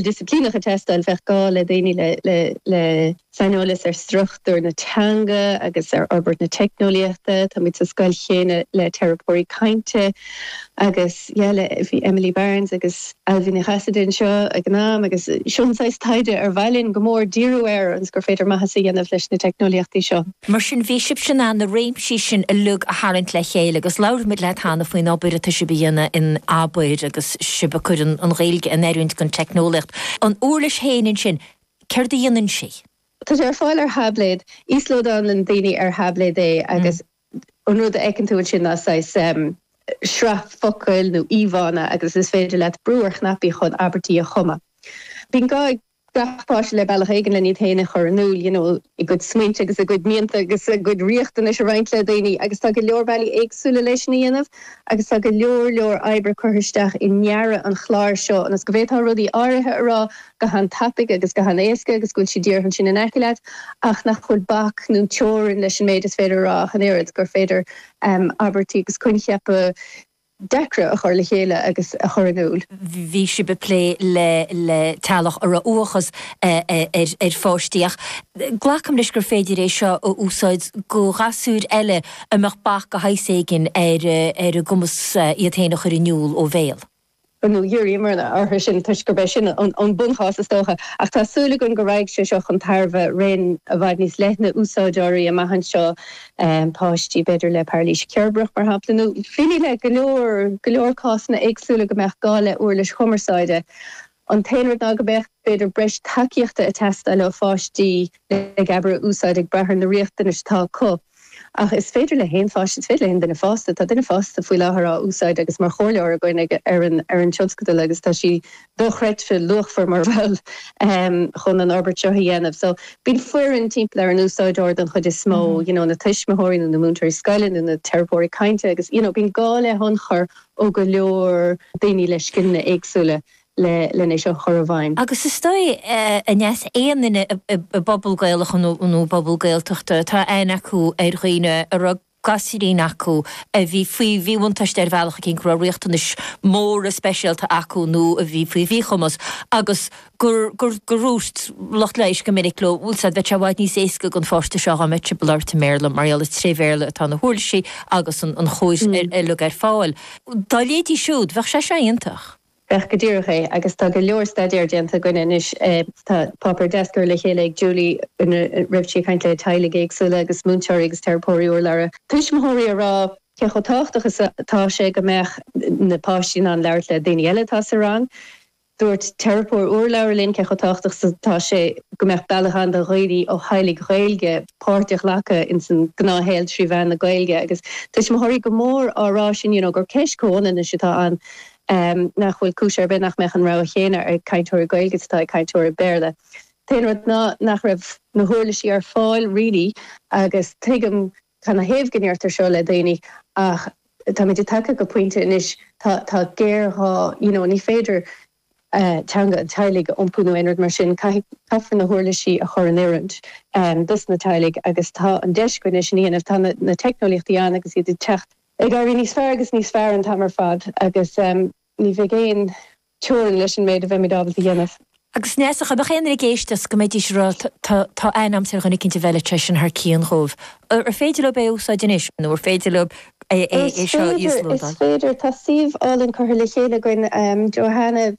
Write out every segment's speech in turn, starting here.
disciplíneach ag teastáil, bheadh gá le daoine le saineolas ar struchtúr na teanga agus ar fhorbairt na teicneolaíochta. Táimid sa scoil chéanna le teiripeoirí cainte agus, yeah, le, bhí Emily Barnes agus Ailbhe Ní Chasaide anseo ag an am agus seo an saghas taighde ar mhaith linn go mór díriú air agus gur féidir maitheas a dhéanamh leis na teicneolaíochtaí seo. Mar sin, bhí sibhse in ann na réimsí sin uilig a tharraingt le chéile agus labhair muid le hAnna faoin obair atá sibh ag déanamh in Abair agus, sibh ag cur na Gaeilge in oiriúint don teicneolaíocht. An uirlis féin ansin, céard a dhéanann sí? Tá sé ar fáil ar thaibléad. Íoslódálann daoine ar thaibléad é agus an rud a fheiceann tú ansin ná saghas sraith focal nó íomhánna agus is féidir leat brú ar chnaipí chun abairtí a chumadh. Bíonn gá ag gach páiste le bealach éigin len iad féin a chur in iúl, you know a gcuid smaointe agus a gcuid mianta agus a gcuid riachtanais a roinnt le daoine agus tá go leor bealaí éagsúla le sin a dhéanamh agus tá go leor leor oibre curtha isteach i ndearadh an chláir seo ionas go bhféadfá rudaí áirithe a rá go han-tapaidh agus go han-éasca agus go bhfuil siad díreach ansin in aice leat ach nach bhfuil bac nó teorainn leis an méid is féidir a rá ach an oiread gur féidir abairtí agus coincheapa deacra a chur le chéile agus a chur in iúl. bhí sibh ag plé le teaghlaigh a raibh uathachas ar pháistí ach glacaim leis gur féidir é seo a úsáid do ghasúir eile a mbeadh bac de shaghas éigin ar a gcumas iad féin a chur in iúl ó bhéal. Bhuel, nó dhíríomar orthu sin toisc gurb é sin an bunchás is dócha, ach tá súil againn go raghaidh sé seo chun tairbhe raon i bhfad níos leithne úsáideoirí amach anseo, páistí, b'fhéidir, le pairilís cheirbreach, mar shampla, nó bheadh go leor, go leor cásanna éagsúla go mbeadh gá le uirlis chumarsáide. An t-aon rud ná go mbeadh, b'fhéidir, breis tacaíochta ag teastáil ó pháistí le Geabaire a úsáid ag brath ar na riachtanais atá acu. Ach is féidir le haon pháiste, is féidir le haon duine fásta, tá duine fásta faoi láthair á úsáid agus mar chomhairleoir againn ag, ar an, ar an tionscadal agus tá sí dochreidte luachmhar mar bhall ehm chun an fhorbairt seo a dhéanamh. So, bíonn foireann timpeall ar an úsáideoir don chuid is mó, you know, na tuismitheoirí nó na múinteoirí scoile nó na teiripeoirí cainte agus, you know, bíonn gá le hionchur ó go leor daoine le scileanna éagsúla. le linn é seo a chur i bhfeidhm. Agus is dóigh, aon duine i bpobal Gaelach nó i bpobal Gaeltachta, tá aithne acu ar dhaoine a raibh gasúirín acu a bhí faoi mhíbhuntáiste ar bhealach éigin, go raibh riachtanais mhóra speisialta acu nó a bhí faoi mhíchumas agus gur dhúirt lucht leighis go minic leo, bhuel, bheadh sé i bhfad níos éasca don pháiste seo dá mbeadh sé ag labhairt i mBéarla mar gheall is tré Bhéarla atá na huirlisí agus an chóir uilig ar fáil dá leithéidí siúd. Bheadh sé seo iontach. Sea go díreach é, agus tá go leor staidéir déanta againne anois. Tá páipéar deas curtha le chéile ag Julie ina raibh sí ag caint le teaghlaigh éagsúla agus múinteoirí agus teiripeoirí urlabhra tuismitheoirí ag rá cé chomh tábhachtach is atá sé go mbeadh na páistí in ann labhairt le daoine eile atá sa rang. Dúirt teiripeoir urlabhra linn cé chomh tábhachtach is atá sé go mbeadh bealach ann do dhaoine ó theaghlaigh Ghaeilge páirt a ghlacadh ins an gnáthshaol trí mheán na Gaeilge agus tuismitheoirí go mór á rá san you know gur ceist comhionannais atá ann. nach bhfuil cúis ar bith nach mbeadh an rogha chéanna ag cainteoirí Gaeilge is atá ag cainteoirí Béarla. B'é an rud ná nach raibh na huirlisí ar fáil really agus tuigim cana thaobh go ndeirtear seo le daoine ach táimid tagtha go pointe anois tá géarghá you know ní féidir teanga an teaghlaigh a iompú nó aon rud mar sin caithfidh caithfear na huirlisí a chur in oiriúint dos na teaghlaigh agus tá an deis againn é sin a dhéanamh tá na na teicneolaíochtaí ann agus iad ag teacht ag éirí níos fearr agus níos fearr an t-am ar fad agus ní bheidh aon teorainn leis an méid a bheimid ábalta a dhéanamh. Agus Neasa, dá mbeadh éinne ag éisteacht go mbeidís ag rá, á, tá aithne agamsa ar dhuine eicínt a bheadh leithéidí sin thar cíonn dhóibh. Ar féidir leob é a úsáid anois nó ar féidir leob é seo a íoslódáil? Is féidir, is féidir. Tá suíomh álainn curtha le chéile againn, Johanna.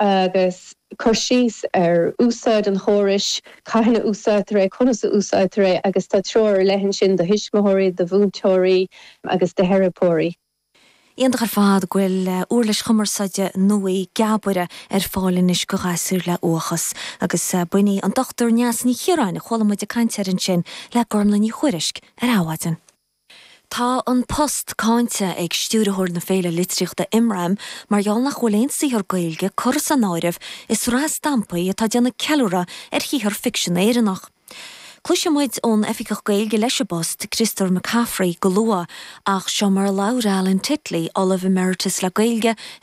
agus cur síos ar úsáid an chórais, cathain a úsáidtear é, conas a úsáidtear é, agus tá treoir ar leith ansin do thuismitheoirí, do mhúinteoirí agus do theiripeoirí. Iontach ar fad go bhfuil uirlis chumarsáide nua, Geabaire, ar fáil anois do ghasúir le uathachas. Agus b'in í an Dr Neasa Ní Chiaráin a chuala muid ag caint air ansin le Gormlaith Ní Thuairisg ar Adhmhaidin. Tá an post cáinte ag Stiúrthóir na Féile Litríochta Imram mar gheall nach bhfuil aon saothar Gaeilge curtha san áireamh i sraith stampaí atá ag déanamh ceiliúradh ar shaothar ficsin Éireannach. Cloisfidh muid ón Oifigeach Gaeilge leis an bpost, Criostóir Mac Cafraidh, go luath ach seo mar a labhair Alan Titley, Ollamh Emeritus le Gaeilge i